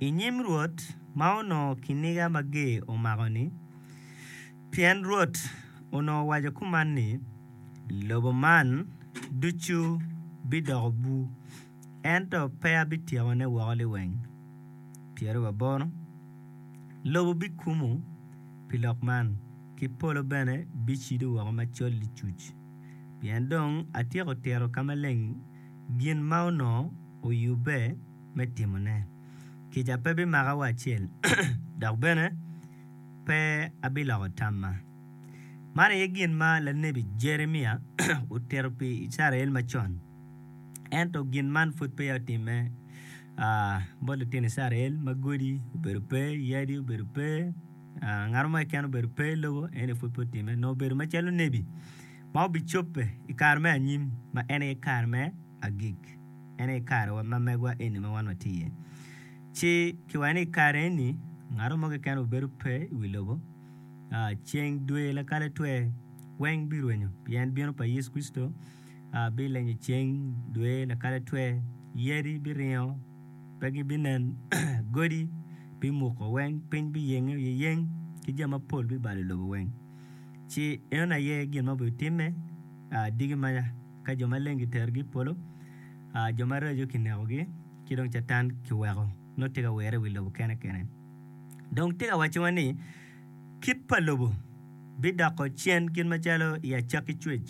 i nyim Rwot ma onongo kiniga mager omako-ni, pien Rwot onongo owaco kuman ni, 'Lobo man ducu bidoko bur, ento pe abityekone woko liweng. Pyerababoro lobo bikumo pi lok man, ki polo bene bicido woko macol licuc, pien dong atyeko tito ka maleng gin ma onongo oyubbe. me timone. Kica pe bimaka wa acel, dok bene pe abiloko tamma. Man aye gin ma lanebi Jeremia otito pi Icrael macon. Ento gin man pud peya otimme bot litino Icrael ma godi obedo pe, yadi obedo pe, ngat mo keken obedo pe i lobo, en aye pud pe otimme. Nongo obedo macalo onebi ma obicobbe i kare me anyim ma en aye kare me agik. en aye karewa ma megwa eni ma wan watye iye. Ci kiwaco ni i kare eni ngato mo keken obedo pe i wi lobo, ceng, dwe, lakale, twer weng birwenyo pien bino pa Yecu Kricito bilenyo ceng, dwe, lakale, twer, yadi biringo pe gibinen, godi bimuko weng, piny biyenge oyeyeng ki jami mapol bibalo i lobo weng. Ci enoni aye gin ma obitimme diki maca. Ka jo maleng giterogi i polo, jo maraco kinekogi ci dong Catan kiweko nongo tye ka wire i wi lobo kene kene. Dong tika wacciwa ni kit pa lobo bidoko cen kit macalo i acakki cwec?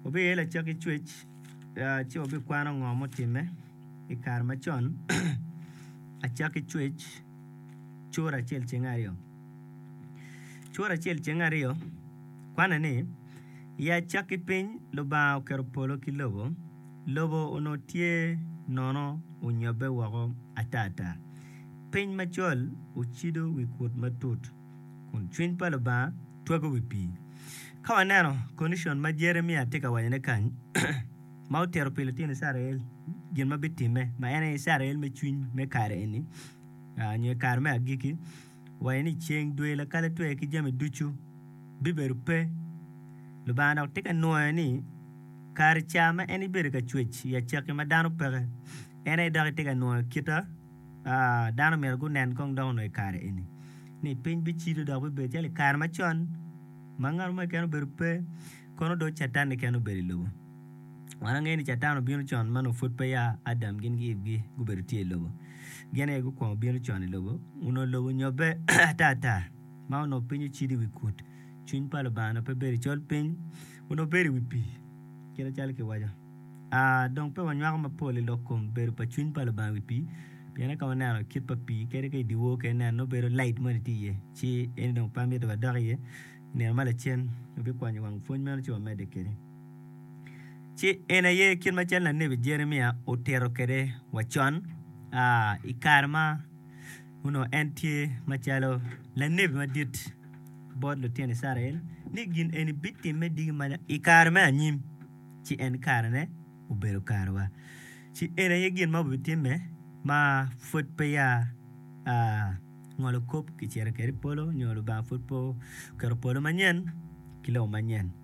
Wabiyelo acakki cwec ci wabikwano ngo mutimme i kare macon, acakki cwec cura acel ceng aryo. Cura acel ceng aryo kwane ni. I acakki piny Lubanga oketo polo ki lobo, lobo onongo tye nono onyobbe woko atata. Piny macol ocido wi kut matut, kun cwiny pa Lubanga twago wi pii. Ka waneno kondicon ma Jeremia tye ka wacone kany, ma otito pi litino Icrael gin ma bitimme, ma en aye Icrael me cwiny me kare eni nyo i kare me agikki, wa ye ni ceng, dwe, lakale, twer ki jami ducu bibedo pe. Lubanga dok tye ka nwoyo ni kare ca ma en ibedo ka cwec i acakki ma dano peke, en aye dok itye ka nwoyo kita ma dano myero gunen kong dok onongo i kare eni ni piny bicido dok bibedo calo i kare macon ma ngat mo keken obedo pe kono dong Catan keken obedo i lobo. Wan wangeyo ni Catan obino con ma onongo pud peya Adam gin ki Ivgi gubedo tye i lobo. Gin aye gukwongo bino con i lobo. Onongo lobo onyobbe atata ma onongo piny ocido i wi kut. Cwiny pa Lubanga onongo pe bedo i col piny, onongo bedo i wi pii kite calo kiwaco. Aa dong pe wanywako mapol i lok kom bedo pa cwiny pa Lubanga i wi pii pien ka waneno kit pa pii kadi ka i dye wor keken ineno nongo bedo lait moni tye iye ci eni dong pe amyero wadok iye. I nino ma lacen wabikwanyo wang pwony meno ci wamedde kwede. ci en aye kit ma cal lanebi Jeremia otito kwede wa con i kare ma onongo en tye macalo lanebi madit bot lutino Icrael ni gin eni bitimme diki ma i kare me anyim ci en karene obedo kare wa ci en aye gin ma obitimme ma pud peya ngolo kop kicito kwede i polo nyo Lubanga pud pe oketo polo manyen ki lobo manyen.